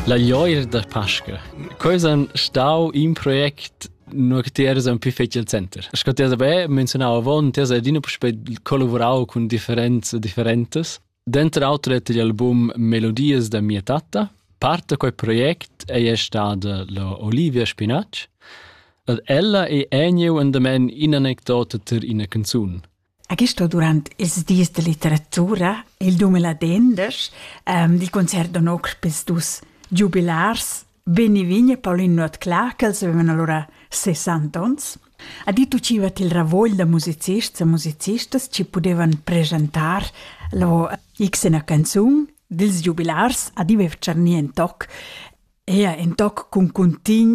La glioir da Pasca. Quei san stau in project nur che ti eras un più fetg al center. Sco ti has beh menzionau avon, ti has adina puspei collaborau cun differents e differentes. Dentro l'altro detto gli album Melodies da mia tatta. Part da quel project è stata la Olivia Spinacci. Ed ella è eniu endamen in anecdota ter ina canzun. A Gisto durant ils dis da litteratura, il 2010, ehm, il concert da noc pels dus giubilars Benny Vigne e Pauline Nuotclà, ch'els avevan allura 60 ons, ha dit uciva til ravogl da musicists e musicistas chi pudevan presentar lo xna canzun dils giubilars ad Ive Tscharnien toc, ea in toc cun cuntign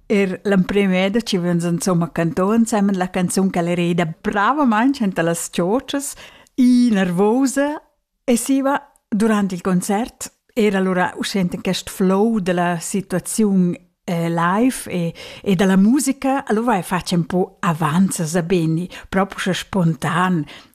Er l'emprim è da ci vegns insomma cantò ensemen la canzun che era ida bravament enta las ciocias, i nervosa e siva durant il concert era allora uscent in quest flow della situaziun eh, live e, e dalla musica, allora vai facem po avanza sa beni, proprio spontan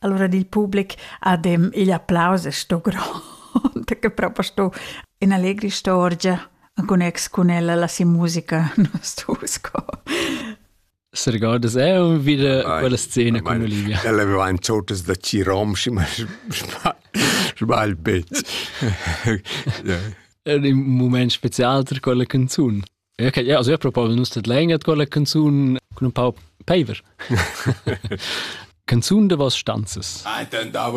Allora il public ha dem igl applaus e sto grond, che proprio sto in allegri storgia con ex con ella la si musica non sto sco. Se ricordas è un video quella scena con Olivia. Ella aveva in totes da Cirom, ma sbagl bet. Era un moment special per quella canzone. Okay, ja, also ich probiere nus dat länger quella canzun con un pau peiver. canzun de was stanzes. Ah, dann da